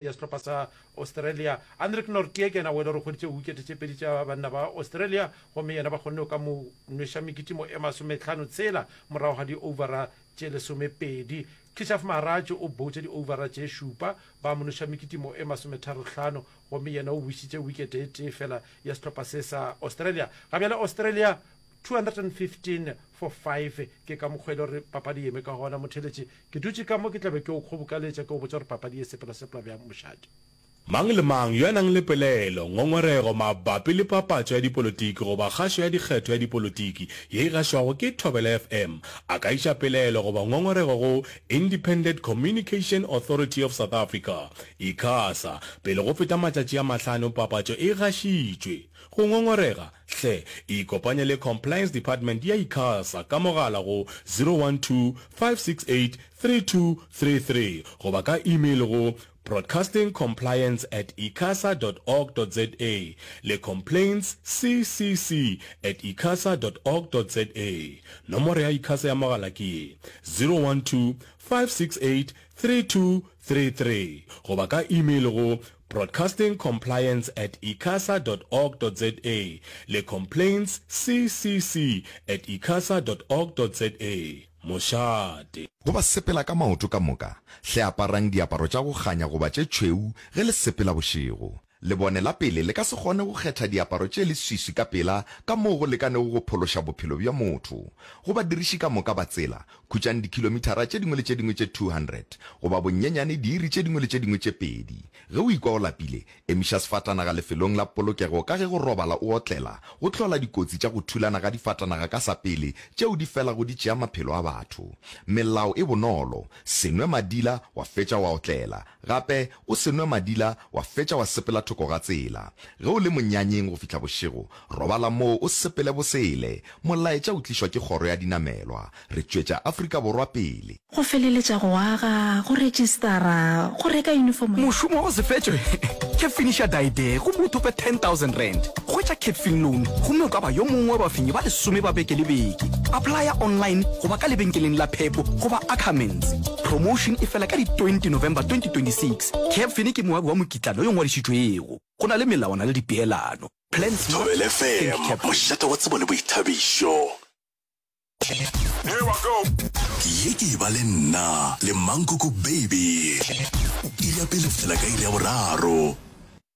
ya sehlopha sa Australia. Anrich Nortje ke yena o e le gore o hweditše wikete tše pedi tša banna ba Australia gomme yena ba kgonne go ka mo nweša mekitimo e masometlhano tshela morago ga di-overa tše lesomepedi. Keshav Maharaj o boutše di-overa tše šupa ba mo nweša mekitimo e masometharo-hlano gomme yena o bušitše wikete e tee fela ya sehlopha se sa Australia. Ga bjale Australia 215 for 5 ke ka mokgwa e le gore papadi yeme ka gona motheletše ke dutše ka mo ke tlabe ke o kgobokaletša ke o botša gore papadi ye sepela sepela bjang mošate. Mang le mang yo a nang le pelaelo, ngongorego mabapi le papatšo ya dipolotiki goba kgašo ya dikgetho ya dipolotiki ye e gašwago ke Thobela FM a ka iša pelaelo goba ngongorego go Independent Communication Authority of South Africa, Icasa, pele go feta matšatši a mahlano papatšo e gašitšwe. Go ngongorega. Hle, ikopanye le Compliance Department ya Icasa ka mogala go 012-568-3233 goba ka email go broadcastingcompliance at icasa dot org dot za le complaintsccc at icasa dot org dot za. Nomoro ya Icasa ya mogala ke ye, 012-568-3233 goba ka email go Broadcasting Compliance at icasa dot org dot za le Complaints CCC at icasa dot org dot za. Mošate. Go ba sepela ka maoto ka moka, hle aparang diaparo tša go kganya goba tše tšhweu ge le sepela bošego. Lebone la pele le ka se kgone go kgetha diaparo tše leswiswi ka pela ka moo go lekanego go phološa bophelo bja motho. Go badiriši ka moka ba tsela, Khutšang dikhilomithara tše dingwe le tše dingwe tše 200, goba bonnyenyane diiri tše dingwe le tše dingwe tše pedi. Ge o ikwa o lapile, emiša sefatanaga lefelong la polokego ka ge go robala o otlela go hlola dikotsi tša go thulana ga difatanaga ka sa pele tšeo di felago di tšea maphelo a batho. Melao e bonolo, Se nwe madila wa fetša wa otlela. Gape o se nwe madila wa fetša wa sepela thoko ga tsela. Ge o le monyanyeng go fihla bošego, robala moo o sepele bosele. Molaetša o tlišwa ke kgoro ya dinamelwa. Re tšwetša Afrika Borwa pele. Go feleletša go aga, go rejistara, go reka uniform ya. Mošomo wa go se fetšwe ke Finisher Die There gomme o thope R10,000. Hwetša Capfin Loan gomme o ka ba yo mongwe wa bafenyi ba lesome ba beke le beke. Applya online go ba ka lebenkeleng la Pep goba Ackermans. Promotion e fela ka di 20 November 2026. Cab Fine ke moabi wa mokitlana yo ngwadišitšwego. Go na le melawana le dipeelano. Plan smart, Thobela think FM, Cab Fine. mošate wa tsebo le boithabišo. ye ke e ba le nna le mankoko baby iri ya pele go fihla ka iri ya boraro